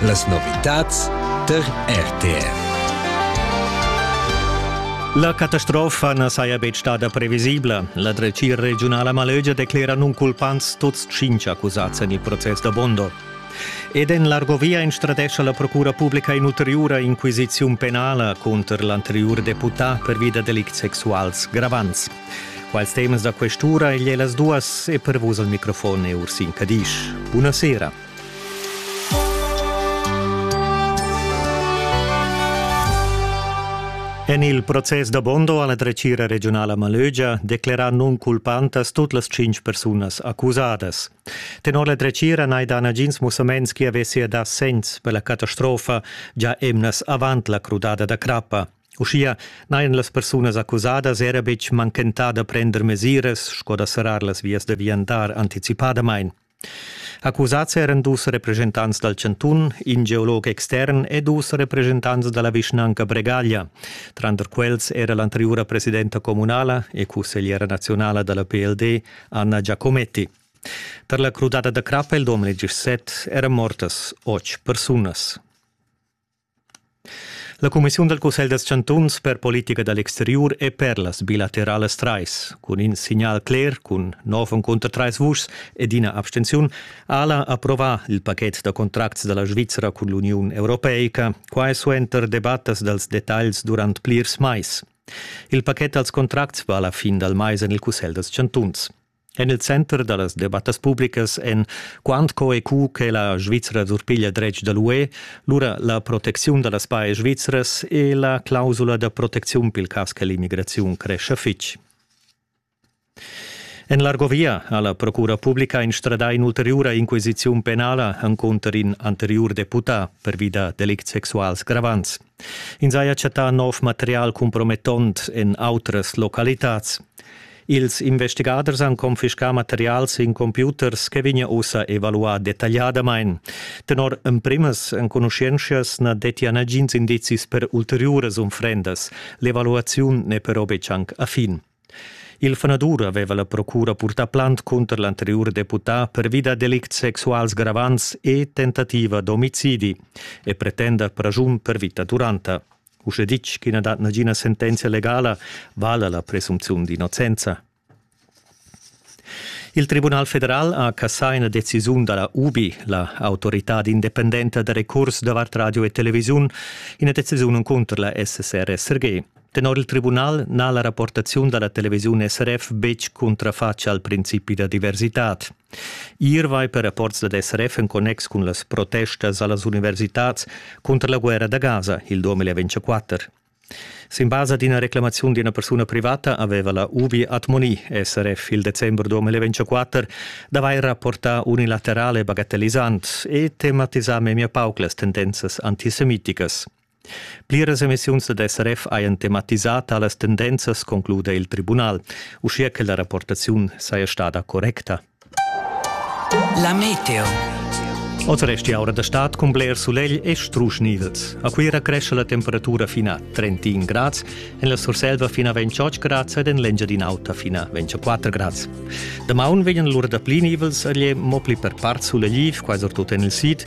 Las novitads tar RTR. La catastrofa na saja betg stada previsibla. La dretgira regiunala Malögia declera nunculpants tuts tschintg accusads en il process da Bondo. Ed en l'Argovia instradescha la Procura publica in'ulteriura inquisiziun penala cunter l'anteriur deputà per via da delicts sexuals gravants. Quals temas da quest'ura igl è las duas e per vus al microfon è Ursin Cadisch. Buna sera. En il process da Bondo alla dretgira regionala Malögia declera non culpantas tut las cinc persunas accusadas. Tenor la dretgira n'hai da nagins mussaments chi avessia da sens per la catastrofa già emnas avant la crudada da crappa. Uschia n'hajan las persunas accusadas era betg manchentà da prender mesiras sco da serrar las vias da viandar anticipadamain. Accusads eran dus represchentants dal chantun, in geolog extern e dus represchentants da la vischnanca Bregaglia. Tranter quels era l'anteriura presidenta communala e cussegliera nazionala da la PLD, Anna Giacometti. Per la crudada da crappa il 2017 eran mortas otg persunas. La cumissiun dal Cussegl dals chantuns per politica da l'exteriur è per las bilateralas trais. Cun in signal cler cun nov encunter trais vuschs ed ina abstenziun Ala approvà il pachet da contracts da la Svizra cun l'Uniun Europeica, quai suenter debattas dals detagls durant plirs mais. Il pachet dals contracts va la fin dal mais en il Cussegl dals chantuns. En il center da las debattas publicas èn quant co e cu che la Svizra surpiglia dretg da l'UE, lura la protecziun da las pajas svizras e la clausula da protecziun pil cas che l'immigraziun crescha fitg. En l'Argovia ha la Procura publica instradà in'ulteriura inquisiziun penala encunter in anteriur deputà pervi da delicts sexuals gravants. Ins haja chattà nov material compromettont en autras localitads. Ils investigaders han confiscà materials in computers che vegna ussa evaluà detagliadamain. Tenor emprimas enconuschientschas na dettia nagins indizis per ulteriuras unfrendas. L'evaluaziun n'è però betg anc a fin. Il fanadur aveva la procura purtà plant cunter l'anteriur deputà pervi da delicts sexuals gravants e tentativa d'omicidi e pretenda praschun per vita duranta. Uschè ditg ch'i na dat nagina sentenzia legala, vala la presumziun d'innocenza. Il Tribunal federal ha cassà ina decisiun da la UBI, la autorità independenta da recurs davart radio e televisiun, ina decisiun cunter la SSR-SRG. Tenor il tribunal n'ha la rapportaziun da la televisiun SRF betg cuntrafatg al principi da diversitad. Ier vai per rapports dad SRF en connex cun las protestas a las universitads cunter la guerra da Gaza il 2024. Sin basa d'ina reclamaziun d'ina persuna privata aveva la UBI Atmoni SRF il december 2024 d'avair rapportà unilaterale bagatellisant e tematisà memia pauc las tendenzas antisemiticas. Pliras emissiuns dad SRF hajan tematisà talas tendenzas, concluda il tribunal, uschia che la rapportaziun saja stada correcta. La meteo. Oz resti aura da stad cun bler sulegl e strusch nivels. A Cuira cresce la temperatura fin a 31 grads, en la Surselva fin a 28 grads ed en l'Engiadin'Auta fin a 24 grads. Damaun vegnan lura da pli nivels a mo pli per part sulegliv, quai surtut en il sid,